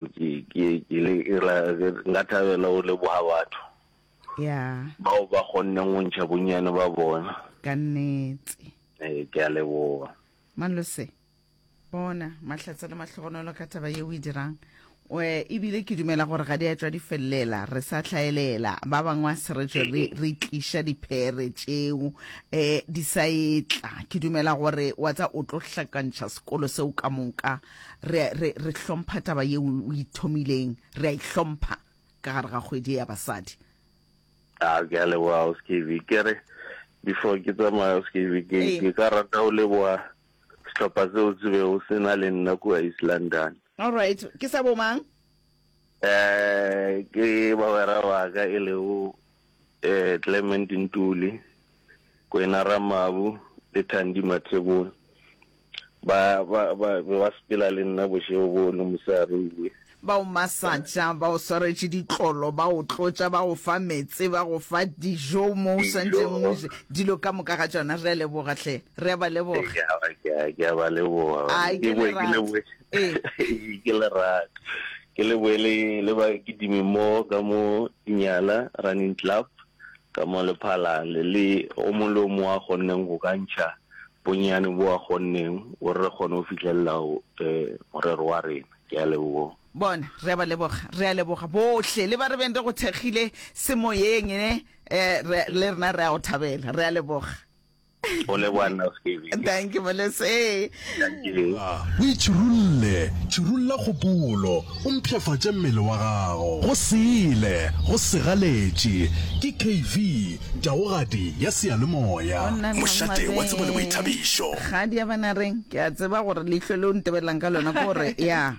Ke, ke, ke le ira, ke, nka thabela go leboga batho ya bao ba kgonneng go ntšha bonnyane ba bona. ka nnete Ee, ke a leboga. malose bona mahlatse le mahlogonolo ka taba ye o e dirang oe ebile ke dumela gore ga di a tšwa di felelela re sa hlaelela ba bangwe a se re tšwe re re tliša diphere tšeo um di sa etla ke dumela gore wa tsa o tlo hlakantšha sekolo seo ka moka re, re, re hlompha taba ye o ithomileng re a ihlompha ka gare ga kgwedi ya basadi a ke a leboga o skv ke re before ke tsamaya o skv ke ka rata o leboga sehlopha seo se be o sena le nna kua east london all right ke sa bomang Ke bagwera ba ka e lego Clement Ntuli, Kwena Ramabu le Thandi Mathebula ba be ba sepela le nna bošego boo le mosegare o be. Ba o masatša, ba o swaretše ditlolo, ba o tlotša, ba go fa meetse, ba go fa dijo mo o swanetšeng o je dilo ka moka ga tšona. Re a leboga hle, re a ba leboga. Ke a ba leboga. Ke boe ke leboge Ee. ke le rata ke le boele le ba ke dime mo ka mo nyala running club ka mo le phala le le o mo lo mo a gonneng go kantša bonyane bo a gonneng o re gone o fitlelela o eh, morero wa rena ke a leboga bona re a ba leboga re a leboga bohle le ba re beng re go thekgile semoyeng ne um le rena re a go thabela re a leboga Go leboa nna o seke be. Thank you Molese. Thank you. O itšhirulle, tšhirulla kgopolo, o mpshafatše mmele wa gago. Go sele, go segaletše. Ke KV, taogadi ya seyalemoya. Go nna Mošate wa tsebo le boithabišo. Kgadi ya bana reng ke a tseba gore leihlo le o ntebelelang ka lona ke gore ya.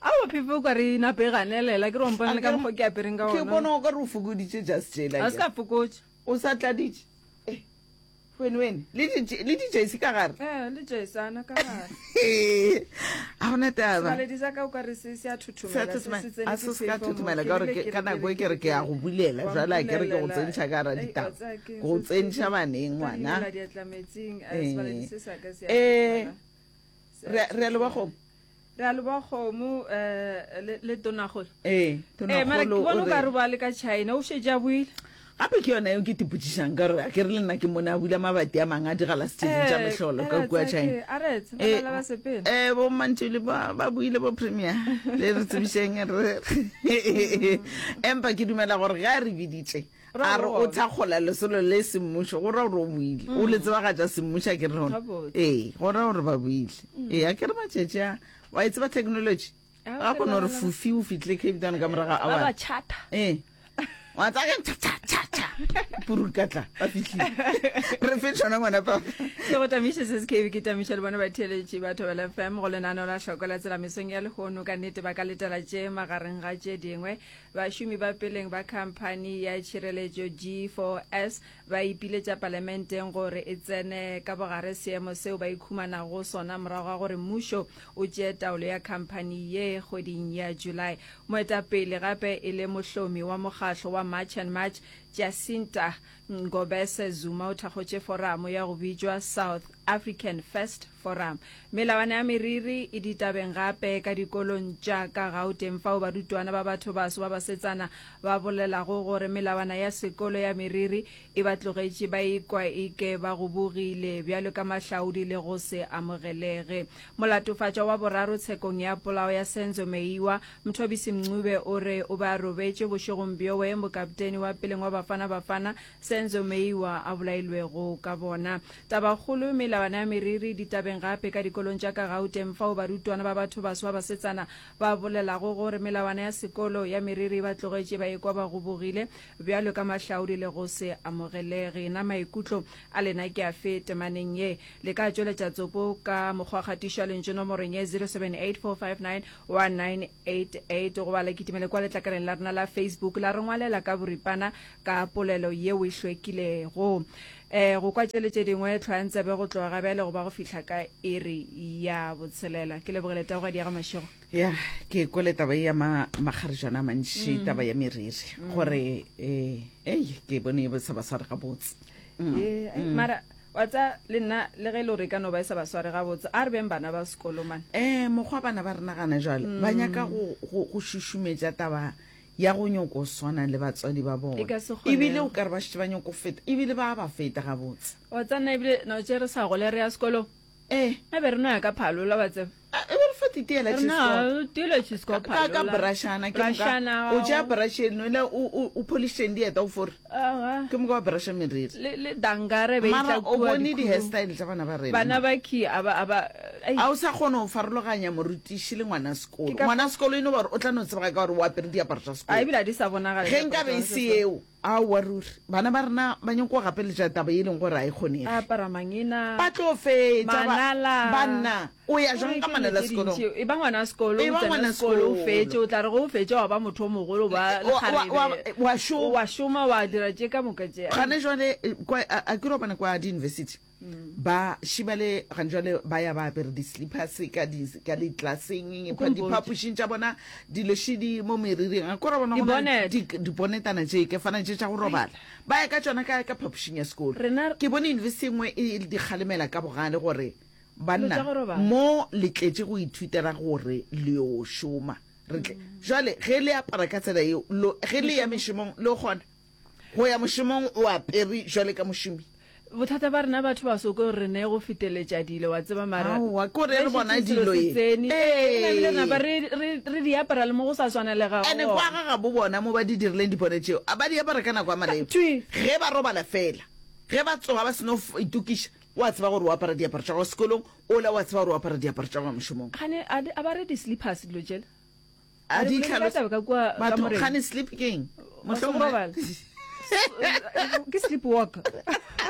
Aowa Phephe o ka re nape ganelela ke re wampona le ka mokgwa ke apereng ka ona. Ke bona o ka re o fokoditše just jela. A se ka fokotša. O sa tladitše. Eh. Wene wene le di le di jersey ka gare. Eh le jersey ana ka gare. A gona taba. Sale di zaka o ka re se se a thuthumela se se tsene. A se se ka thuthumela ka gore ka nako e ke re ke ya go bulela jwale a ke re ke go tsentsha ka ra ditaba. Go tsentsha baneng ngwana. Eh. Eh. Re re le ba go re a leboga kgomo um eh, le tonagolo ee mara ke bona o ka re ba le ka china o šetse a buile gape ke yona eo ke tipotsišang ka gore ke re le nna ke mone a bula mabati a mangwe a digala setšeding tša eh, mehlolo ka eh, kua china um bommantšele ba buile bo premier le re tsebišeng empa ke dumela gore ga re biditše A re o thakgola lesolo le semmušo, go ra gore o buile. O le tsebagatša semmušo, a ke re gona? Ee, go ra gore ba buile. Ee, a ke re matšatši a, wa e tseba technology? Ga kone gore fufi o fitlile Cape Town ka morago a wa. Ee. Wa tsa ke cha cha cha cha. Purukatla, ba fitlhile. Re fe tšona ngwana papa. Ke go tamiše se se kebe ke tamiše le bona batheeletše ba Thobela FM go lenaneo la hloko la tselamisong ya lehono ka nnete ba ka letela tše magareng ga tše dingwe Bašomi ba peleng ba khamphani ya tšhireletšo G4S ba ipiletša palamenteng gore e tsene ka bogare seemo seo ba ikhumanago go sona morago ga gore mmušo o tšee taolo ya khamphani ye kgweding ya July. Moetapele gape e le mohlomi wa mokgahlo wa March and March, Jacinta Ngobese Zuma o thakgotše foramo ya go bitšwa South African First Forum. Melawana ya meriri e ditabeng gape ka dikolong tša ka Gauteng fao barutwana ba bathobaso ba basetsana ba bolelago gore melawana ya sekolo ya meriri e ba tlogetše ba ikwa e ke ba gobogile bjalo ka mahlaodi le go se amogelege. Molatofatšwa wa boraro tshekong ya polao ya Senzo Meyiwa, Mthobisi Mncube o re o be a robetše bošegong bjoe mokapteni wa peleng wa Bafana Bafana, Senzo Meyiwa a bolailwego ka bona. Tabakgolo, Melawana ya meriri ditabeng gape ka dikolong tša ka Gauteng fao barutwana ba bathobaso ba basetsana ba bolelago gore melawana ya sekolo ya meriri e ba tlogetše ba ekwa ba gobogile bjalo ka mahlaodi le go se amogelege. Na maikutlo a lena ke afe temaneng ye? Le ka tšweletša tsopo ka mokgwakgatišo wa lentšu nomorong ye 0784591988 goba la kitimele kwa letlakaleng la rena la Facebook la re ngwalela ka boripana ka polelo yeo e hlwekilego. E, go kwa tšele tše dingwe, tlhwayang tsebe go tloga bjale go ba go fihla ka iri ya botshelela. Ke lebogele taogadi ya ga Mašego. ya ke kwele taba e ya ma- makgarijana a mantši taba ya meriri gore eh, ei ke bone e bo seba sware gabotse Ee, ai, mara wa tsa le nna le ge e le gore e ka no ba e sa ba sware gabotse a re beng bana ba sekolo mane um mokgwa bana ba re nagana jalo ba nyaka go- go go šušumetša taba ya go nyoko o swana le batswadi ba bona e ka se kgone ebile o ka re ba shitse ba nyoko feta ebile ba ba feta ga botse wa tsana ebile no tse re sa gole re ya sekolo eh a be re no ya ka phalo la ba tseba ah, e be re fa tite la tshisko no tile tshisko phalo ka ka brashana ke ka o ja brashe no la u u polisheng di eta o fore ke moka wa brusha meriri le le dangare be mara o bone di-hairstyle tsa bana ba rena bana ba ki aba aba ai a o sa kgone go farologanya morutiši le ngwana sekolo Ke ka- ngwana sekolo e no gore o tla no tsebega ka gore o apere diaparo tsa a sekolo ebile a di sa bonagala ge nka be e se eo a wa ruri bana ba rena ba nyako gapeletša taba e leng gore a e a kgonege apara mangena ba tlo fetsa ba- Manala. banna O ya jwang ka manala sekolong? E ba ngwana sekolo, o tsena sekolo, o fetše, o tla re go o fetše wa ba motho o mogolo, ba lekgarebe, wa šoma, wa dira tše ka moka tše. Gane jwale, a ke robane kwa di-university, ba šiba le gane jwale ba ya ba apere di-slippers ka di-classeng, diphapošing tša bona, dilošidi mo meriring, a ke ra bona gona dibonetana tše ke fana tše tša go robala, ba ya ka tšona ka phapošing ya sekolo. Ke bone university e nngwe e di kgalemela ka bogale gore, Banna, mo le tletše go ithuta ra gore le yo šoma. Re tle, jwale, ge le apara ka tsela yeo, lo, ge le ya mešomong, le kgona go ya mošomong o apere jwale ka mošomi. Bothata ba rena batho baso ke gore re ne go feteletša dilo, wa tseba, mara Aowa, ke gore re bona dilo ye. Tseni, ee, na bile napa re, re, re di apara le mo go sa swanelega gona. Ene kwa ga gabo bona mo ba di dirileng dipone tšeo, a ba di apara ka nako ya maleba, ge ba robala fela, ge ba tsoga ba seno itokiša, O a tseba gore o apara diaparo tša go ya sekolong, ola o a tseba gore o apara diaparo tša go ya mošomong. Kgane a di abare di slippers dilo tšela. A di hlalosa. Ka kwa ka moreng. Kgane slip keng? Mohlomong. Ke slip walk.